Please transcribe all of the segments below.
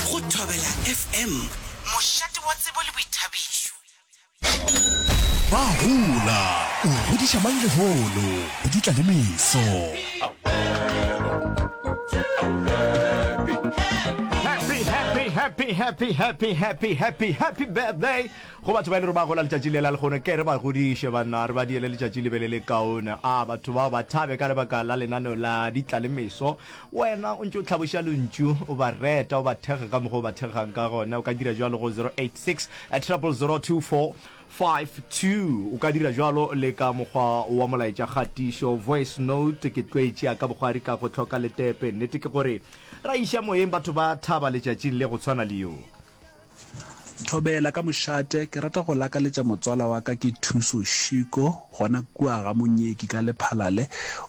Go Thobela FM, mošate wa tsebo le boithabišo. Ba hola, o godiša mang lehono, go dutla le meso. Happy, happy, happy, happy, happy, happy birthday go batho ba e le gore ba gola letšatši lela lekgono ke re ba godiše banna re ba diele letšatši le be le le kaone a batho bao ba thabe ka lebaka la lenaneo la ditla le meso Wena o ntše o hlaboša lentšu, o ba reta, o ba thekga ka mokgwa o ba thekgang ka gona. O ka dira bjalo go 086-000-252. O ka dira bjalo le ka mokgwa wa molaetšakgatišo, voice note. Ke tlwaetše ya ka bogwari ka go hloka letepe. Nnete ke gore ra iša moyeng batho ba thaba letšatšing le go tshwana le yo. Thobela ka mošate, ke rata go lakaletša motswala wa ka ke Thuso Shiko gona kua ga Monyeki ka Lephalale.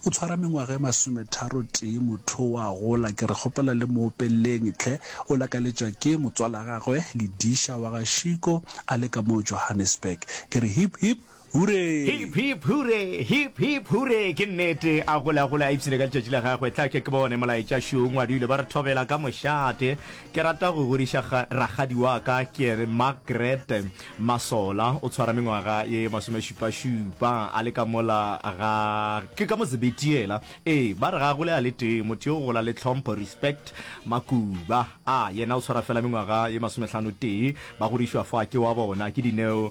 O tshwara mengwaga e masometharo tee, motho o a gola, ke re kgopela le mo opelleng hle. O lakaletšwa ke motswalagagwe Lidisha wa ga Shiko a le ka mo Johannesburg. Ke re hip hip. Huree! Hip hip hure, hip hip hure Ke nnete, a gole a gole a ipshine ka letšatši la gagwe Tla ke ke bone molaetša Šo Ngwadule ba re thobela ka mošate Ke rata go godiša ga, rakgadi wa ka Ke ene Margaret Masola O tshwara mengwaga ye masomešupašupa A le ka mola ga, ke ka Mozebeti yela Ee, ba re ga a gole a le tee Motho yo o gola le tlhompho, respect Makuba, a, yena o tshwara fela mengwaga ye masomehlano tee Ba godišwa fa ke wa bona Ke Dineo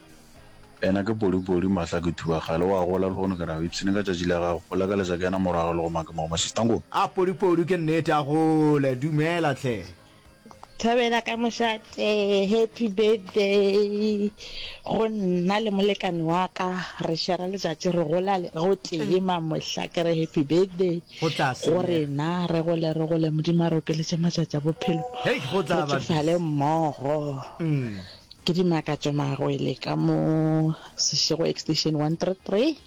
Ena ke polipoli, mahla ke thuba kgale wa gola lehono ke nago ipshine ka tšatši la gago go lakaletša ke ena morago le go make mao mashistangong. A polipoli ke nnete a gole dumela hle. Thabela ka mošate happy birthday go nna le molekane wa ka re shera letšatši re gola gotee ma mohla ke re happy birthday go rena re gole re gole modimo a re okeletše matšatši a bophelo re tšofale mmogo. Ke di makatšo magwele ka mo Seshego Extension 133.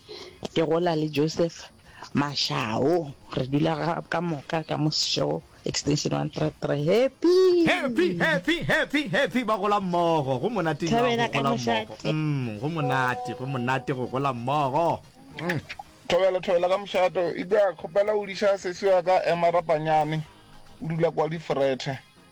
Ke gola le Joseph Mashao. Re dula ka moka ka mo Seshego Extension 133. Happy! Happy, happy, happy, happy, ba gola mmogo. Go monate nna go Thobela ka gola mmogo. mošate. Umm, go monate, go monate go gola mmogo. Thobela, Thobela ka mošate. Eupša kgopela o diša sesi wa ka Emma Rapanyane. O dula kwa Lifrethe.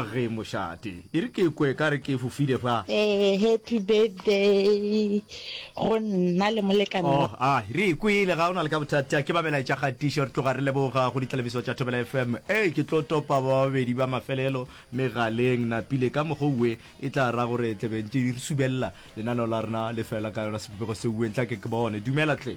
Ge mošate e re ke kwe ka re ke fofile fa. Ee, happy birthday go nna le molekane wa. Oh, a re e kwele, ga o na le ka bothata. Ke ba melaetša kgatišo, re tloga re leboga go ditlalebiso tša Thobela FM. Ee, ke tlo topa ba babedi ba mafelelo megaleng. Napile, ka mokgwa o we, e tla ra gore tle be ntše re subelela lenaneo la rena le fela ka yona sebopego se we, ntlake ke bone. Dumela, tle.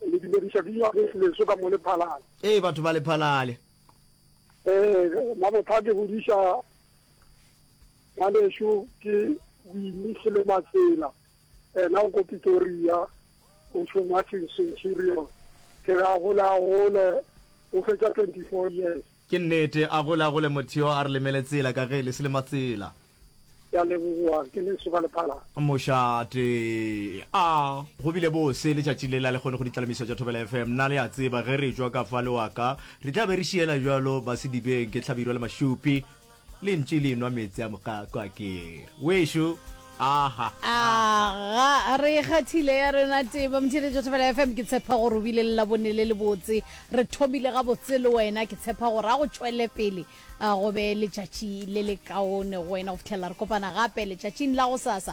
Le dumediša bini wa ge leso ka mo Lephalale. Ee, batho ba Lephalale. Ee, mabotha ke godiša ngwaneso ke Winnie Selematsela, ena o ko Pitoria, o šoma Centurion. Ke re a gole a gole, o fetša 24 years. Ke nnete, a gole a gole motho yo a re lemele tsela ka ge le se le matsela. Ke a leboga, ke le soka le phala. Mošate, A go bile bose letšatši le la le kgone go ditlalemiso tša Thobela FM? Na le a tseba ge re tšwa ka fa le wa ka re tla be re šiela bjalo Basedibeng ke Hlabirwa le Mašupi? Le ntše le enwa meetse a moqaqwa ke we'šo. Aha. Aga re ikgathile ya rena teba motšhile jo thobela FM ke tshepa gore o bile le labone le le botse re thomile ga botse le wena ke tshepa gore a go tšwele pele go be letšatši le le kaone go wena go fitlhelela re kopana gape letšatšing la go sasa